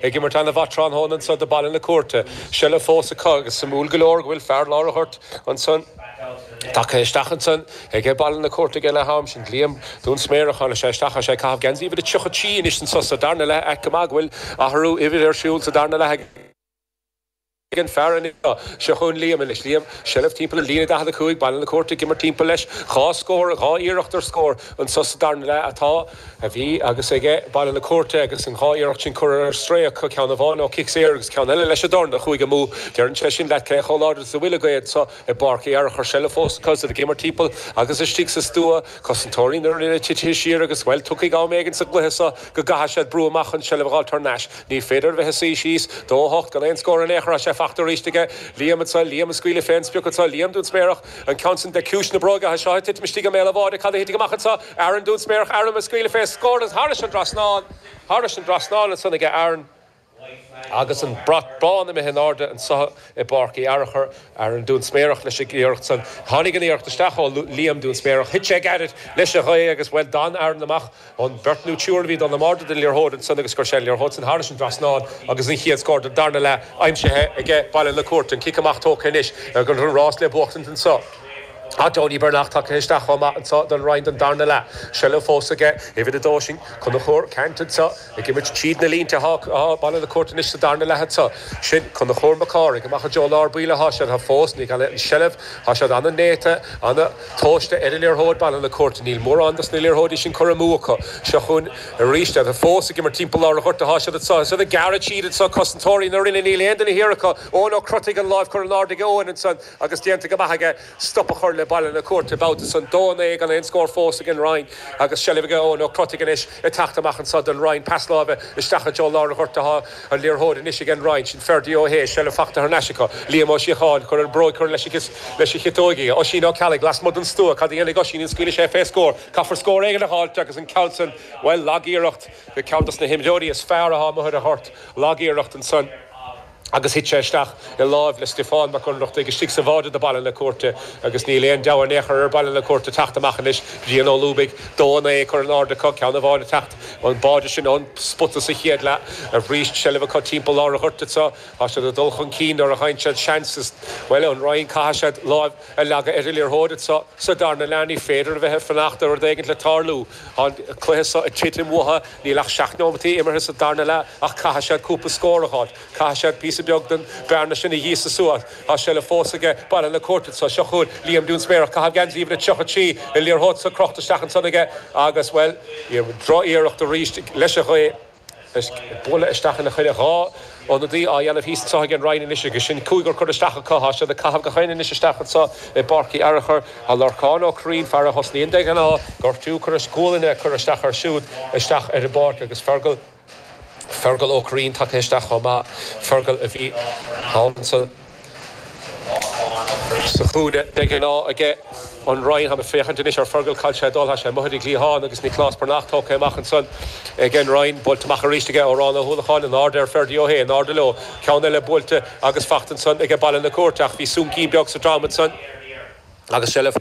Ag imirt an-mhaith tráthnóna anso do Baile na Cúirte. Seilbh fós acu agus suimiúil go leor go bhfuil fear lár an ghoirt ansan tagtha isteach ansan aige Baile na Cúirte aige leath-am, sin Liam Dúinsméarach. Tháinig sé isteach agus é ag caitheamh geansaí uimhir a 33 anois anso sa darna leath. Ait go maith go bhfuil athrú uimhir ar siúl sa darna leath ag. Ag an fear anseo. Seo chugainn Liam anois. Liam, seilbh timpeall an líne, 45, Baile na Cúirte ag imirt timpeall leis. Dhá scór, dhá iarracht ar scór. Anso sa darna leath atá, a bhí agus aige Baile na Cúirte agus an dhá iarracht sin curtha ar strae acu, ceann amháin ó chic saor agus ceann eile leis an dorn a chuaigh amú. Deireann sé sin leat cé chomh láidir is a bhfuil an ghaoth seo. I bPáirc Uí Fhearchair seilbh fós acu is iad ag imirt timpeall agus istigh sa stua. Cosantóirí na Rinne titithe siar agus, bhuel, tiocfaidh am éigin sa gcluiche seo go gcaithfidh siad brú amach chun seilbh a fháil thar n-ais. Ní féidir a bheith ag suí síos. Dó a hocht gan aon scór in aon chor. Tá sé fachta aríst aige. Liam anso. Liam ag scaoileadh fé an sprioc anso. Liam Dúinsméarach. An ceann san de chiumhais na bróige. Tá seo ag titim istigh i mbéal an bháide. Cad a thitfidh amach anso? Aaron Dúinsméarach. Aaron ag scaoileadh fé scór agus thairis an dtrasnán. Thairis an dtrasnán ansan aige Aaron. Agus an brat bán imithe in airde anso i bPáirc Uí Fhearchair, Aaron Dúinsméarach leis an iarracht san. Tháinig an iarracht isteach ó Liam Dúinsméarach, thit sé gairid leis an ghaoth agus bhuel d'fhan Aaron amach ón beirt nó triúr a bhí ag dul in airde den liathróid ansan agus chuir sé an liathróid san thairis an dtrasnán agus an chéad scór den darna leath aimsithe aige Baile na Cúirte, an cic amach tógtha anois agus an rás le buachtaint anso ach Donie Breathnach tagtha isteach chomh maith anso don Rinn don darna leath. Seilbh fós aige, uimhir a dó sin, Conchúr Cant anso. Ag imirt tríd na línte atá Baile na Cúirte anois sa darna leath anso. Sin Conchúr Mac Cárthaigh amach i dtreo lár baill atá siad fós ní gan an seilbh. Tá siad ana-néata, ana-thomhaiste ar an liathróid Baile na Cúirte. Níl mórán dos na liathróidí sin curtha amú acu. Seo chugainn aríst iad. Fós ag imirt timpeall lár an ghoirt atá siad anso. Is iad ag gearradh tríd anseo cosantóirí na Rinne. Níl aon duine thiar acu. Eoin Ó Crotaigh an láimh curtha in airde ag Eoin ansan agus déanta go maith aige. stop a chur le Baile na Cúirte babhta san, 2-9 gan aon scór fós ag an Rinn agus seilbh ag Eoin Ó Crotaigh anois ag teacht amach anso don Rinn, pas láimhe isteach i dtreo lár an ghoirt atá an liathróid anois ag an Rinn, sin Ferdia Ó hAodha, seilbh fachta thar n-ais acu, Liam Ó Síocháin, cur ar bróig, cur leis an chiotóig í, Oisín Ó Ceallaigh lasmuigh don stua, cad a dhéanfaidh Oisín, an scaoilfidh sé fé scór, caithfear scór éigin a dh'fháilt agus an ceann san, bhuel, lag-iarracht, ceann dos na himreoirí is fearr atá amuigh ar an ghort, lag-iarracht ansan. agus thit sé isteach i láimh le Stiofán Mac Ionnrachtaigh istigh sa bháide do Baile na Cúirte agus níl aon deabhadh in aon chor ar Bhaile na Cúirte teacht amach anois. Brian Ó Lúbaigh, dó a naoi curtha in airde acu ceann amháin ag teacht an báide sin ón spota sa chéad leath aríst seilbh acu timpeall lár an ghoirt anso tá siad ag dul chun cinn nuair a fhaigheann siad seans is bhuel an Rinn caithfidh siad láimh a leagadh ar an liathróid anso sa darna leath ní féidir a bheith ag fanacht ar rud éigin le tarlú. Tá an cluiche seo ag titim uathu. Níl ach seacht nóimeataí imeartha sa darna leath ach caithfidh siad cúpla scór a dh'fháilt. Caithfidh siad píosa beag den bhearna sin a ghíosadh suas. Tá seilbh fós aige Baile na Cúirte anso. Seo chugainn Liam Dúinsméarach ag caitheamh geansaí uimhir a 33, an liathróid seo crochta isteach ansan aige agus, bhuel, níor, droch-iarracht arís leis an ghaoth. Anois bualadh isteach ina choinne. Dhá ionadaí á dhéanamh thíos anseo ag an Rinn anois agus sin cúigear curtha isteach acu. Tá siad ag caitheamh gach éinne anois isteach anseo i bPáirc Uí Fhearachair. Tá Lorcán Ó Curraoin, fear a thosnaíonn de ghnáth, gortú, curtha, gualainne curtha isteach air siúd isteach ar an bpáirc agus Fergal, Fergal Ó Curraoin tagtha isteach chomh maith. Fergal a bhíonn sa. Sa chúinne, de ghnáth aige an Rinn, tháim ag féachaint anois ar Fergal cá bhfuil sé ag dul, thá sé imithe go dtí an gcliathán agus Nioclás Breathnach tógtha amach ansan. Ag an Rinn, buailte amach arís aige Odhrán Ó hUallacháin, in airde ar Ferdia Ó hAodha, in airde leo, ceann eile buailte agus fachta ansan aige Baile na Cúirte ach bhí soincín beag sa drom ansan agus seilbh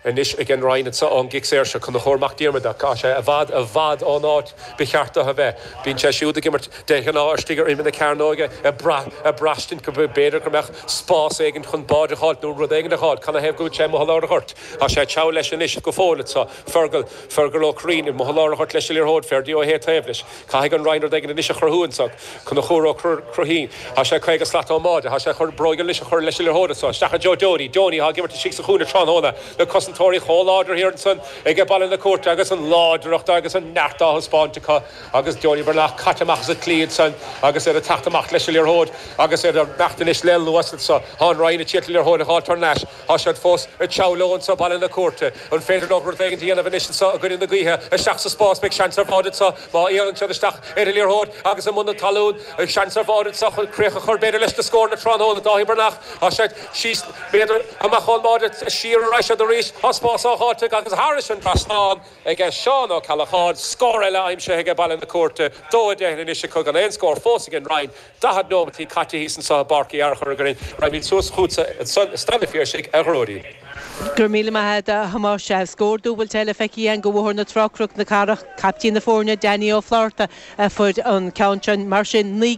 Anois ag an Rinn anseo ón gcic saor seo, Conchubhar Mac Diarmada, ach tá sé i bhfad, i bhfad ón áit ba cheart dó a bheith. Bíonn sé siúd ag imirt de ghnáth istigh ar imeall na cearnóige, ag brath, ag braistint go mb'fhéidir go mbeadh spás éigin chun báide a dh'fháilt nó rud éigin a dh'fháilt. Cad ina thaobh go bhfuil sé amuigh i lár an ghoirt? Tá sé ag treabhadh leis anois go fóill anseo. Fergal, Fergal Ó Curraoin, amuigh i lár an ghoirt leis an liathróid, Ferdia Ó hAodha taobh leis. Caithfidh an Rinn rud éigin anois a chruthú anseo Conchubhar Ó Curraoin. Thá sé caoga slat ón mbáide. Thá sé chun bróig anois a chur leis an liathróid anseo isteach i dtreo Donie, Donie atá ag imirt istigh sa chúinne tráthnóna na cosantóirí chomh láidir thiar ansan ag Baile na Cúirte agus an láidreacht agus an neart á thaispeáint acu agus Donie Breathnach caite amach as an tslí ansan agus iad ag teacht amach leis an liathróid agus iad ag imeacht anois le luas anseo. Thá an Rinn a d'iarraidh an liathróid a dh'fháilt thar n-ais. Tá siad fós ag treabhadh leo anseo Baile na Cúirte. An féidir leo rud éigin a dhéanamh anois anseo i gcoinne na gaoithe? Isteach sa spás, beidh seans ar bháide anseo má dhéanann siad isteach ar an liathróid agus i mbun na talún. Beidh seans ar bháide anseo chun críoch a chur b'fhéidir leis na scóranna tráthnóna. Dáithí Breathnach, Tá siad fiche méadar amach ón mbáide, siar ar ais siad arís. Tá spás á dh'fháilt acu agus thairis an trasnán ag Seán Ó Ceallacháin. Scór eile aimsithe aige Baile na Cúirte, 2 10 anois agus gan aon scór fós ag an Rinn. 40 nóimeataí caite thíos anso i bPáirc Uí Fhearchair againn. Raghaimid suas chughatsa ansan i Staid an Phiarsaigh, a Ghearóidín. Go raibh míle maith a't, a Thomáis. Scór dúbailte eile feicthe againn do Bhóthar na Trá, Cnoc na Cathrach. Caiptín na foirne, Danny Ó Flátharta, a fuair an ceann sin. Mar sin, naoi